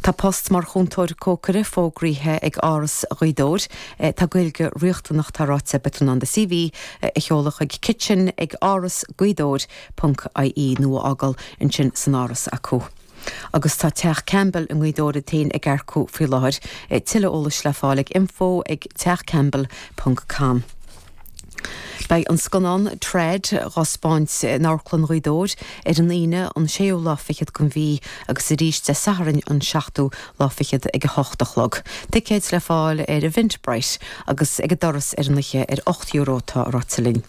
Tá post mar chúntóir cócaire fógraithe ag Áras Ghaoth Dobhair. Tá Gaeilge riachtanach, tá ráite. Beidh tú in ann do CV a sheoladh chuig kitchen ag áras gaoth dobhair ponc IE nó a fhágáil ansin san Áras acu. Agus tá Teach Campbell i nGaoth Dobhair iad féin ag earcú faoi láthair. Tuilleadh eolais le fáil ag info ag teachcampbell ponc com. Beidh an scannán Trad dhá spáint in Amharclann Ghaoth Dobhair ar an Aoine an séú lá fichead den mhí agus arís Dé Sathairn an seachtú lá fichead ag a hocht a chlog. Ticéid le fáil ar Eventbrite agus ag an doras ar an oíche ar ocht euro tá ráite linn.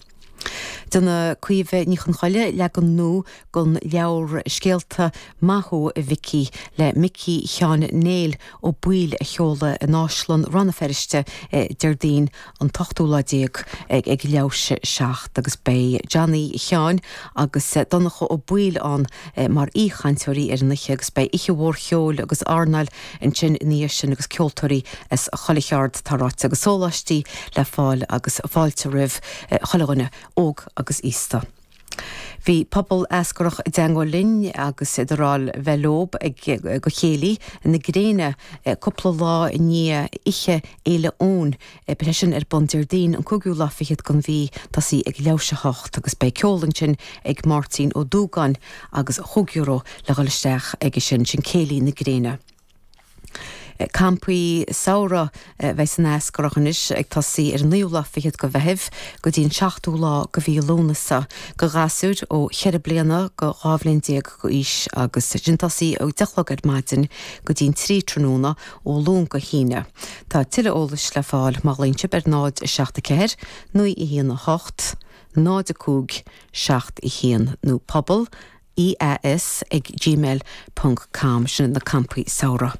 Déanfaidh Caoimhe Ní Chonchoille leagan nua den leabhar Scéalta Maith Thú a Mhicí le Micí Sheáin Néill Ó Baoill a sheoladh in Áislann Rann na Feirste Déardaoin an t-ochtú lá déag ag leathuair tar éis a seacht agus beidh Johnny Sheáin agus Donncha Ó Baoill ann mar aoichainteoirí ar an oíche agus beidh oíche mhór cheoil agus airneáil ansin ina dhiaidh sin agus ceoltóirí as chuile cheard tá ráite agus sóláistí le fáil agus fáilte roimh chuile dhuine, óg agus aosta. Bhí Pobal Eascarrach i dteangmháil linn agus iad ag rá libh a bheith leob ag go Chéilí na Gréine cúpla lá i ndiaidh Oíche Fhéile Eoin, beidh sé sin ar bun Déardaoin an cúigiú lá fichead den mhí, tosaí ag leathuair tar éis a hocht agus beidh ceol ansin ag Máirtín Ó Dúgáin agus chúig euro le dhul isteach aige sin, sin Céilí na Gréine. Campaí samhraidh a bheidh san Eascarrach anois, ag tosaí ar an naoú lá fichead de Mheitheamh go dtí an seachtú lá de mhí Lúnasa, do ghasúir ó cheithre bliana go dhá bhliain déag d'aois, agus iad ag tosaí ó deich a chlog ar maidin go dtí an trí tráthnóna ó Luan go hAoine. Tá tuilleadh eolais le fáil má ghlaonn sibh ar 0, 7, 4, 9, 1, 8, 0, 5, 7, 1 nó pobal eas ag gmail ponc com. Sin iad na campaí samhraidh.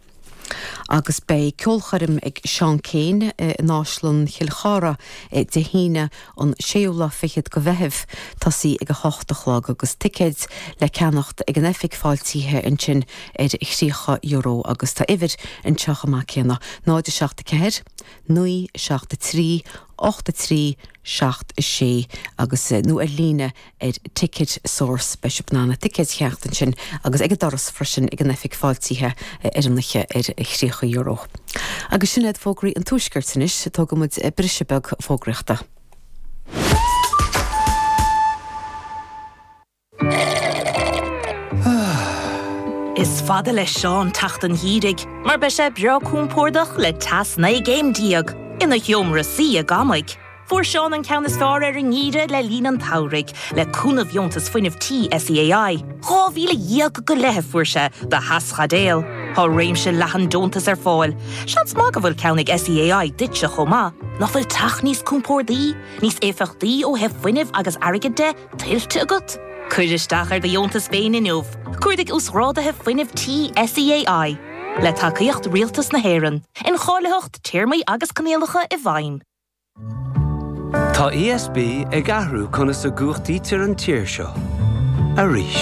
Agus beidh ceolchoirm ag Seán Keane in Áislann Chill Chartha Dé hAoine an séú lá fichead de Mheitheamh, tosaí ag a hocht a chlog, agus ticéid le ceannacht ag an oifig fáiltithe ansin ar thríocha euro. Agus tá uimhir anseo chomh maith céanna, 0, 7, 4, 9, 7, 3, 8, 3, 7, 6, agus, nó ar líne ar Ticket Source, beidh sibh in ann ticéid a cheannacht ansin agus ag an doras freisin ag an oifig fáiltithe ar an oíche ar thríocha euro. Agus sin iad fógraí an tuaiscirt anois, tógfaidh muid briseadh beag fógraíochta. Is fada le Seán teacht an gheimhridh mar beidh sé breá compordach le teas naoi gcéim déag ina sheomra suí ag amaigh. Fuair Seán an ceann is fearr ar an ngeimhreadh le linn an tsamhraidh, le cúnamh dheontas fuinnimh tí SEAI. Dhá mhíle dhéag go leith a fuair sé do theaschaidéal. Tá réimse leathan deontas ar fáil. Seans maith go bhfuil ceann ag SEAI duitse chomh maith. Nach bhfuil teach níos compordaí, níos éifeachtaí ó thaobh fuinnimh agus airgid de, tuillte agat? Cuir isteach ar do dheontas féin inniu. Cuardaigh Uasghráduithe Fuinnimh Tí SEAI. Le tacaíocht Rialtas na hÉireann. Incháilitheacht, Téarmaí agus Coinníollacha i bhfeidhm. Tá ESB ag athrú conas a gcumhachtaítear an tír seo. Arís.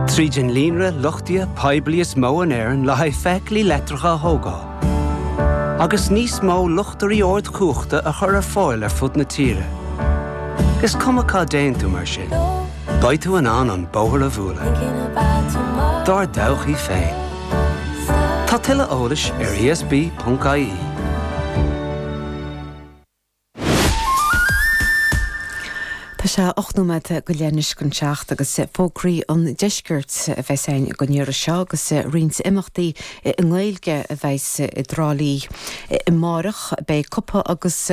Tríd an líonra luchtaithe poiblí is mó in Éirinn le haghaidh feithiclí leictreacha a thógáil. Agus níos mó luchtairí ardchumhachta a chur ar fáil ar fud na tíre. Is cuma cá dtéann tú mar sin, beidh tú in ann an bóthar a bhualadh. Dár dtodhchaí féin. Tá tuilleadh eolais ar ESB.ie. Tá sé ocht nóiméad go leith anois chun a seacht agus fógraí an deiscirt a bheas againn go deireadh seo agus roinnt imeachtaí i nGaeilge a bheas i dTrá Lí amárach. Beidh cupa agus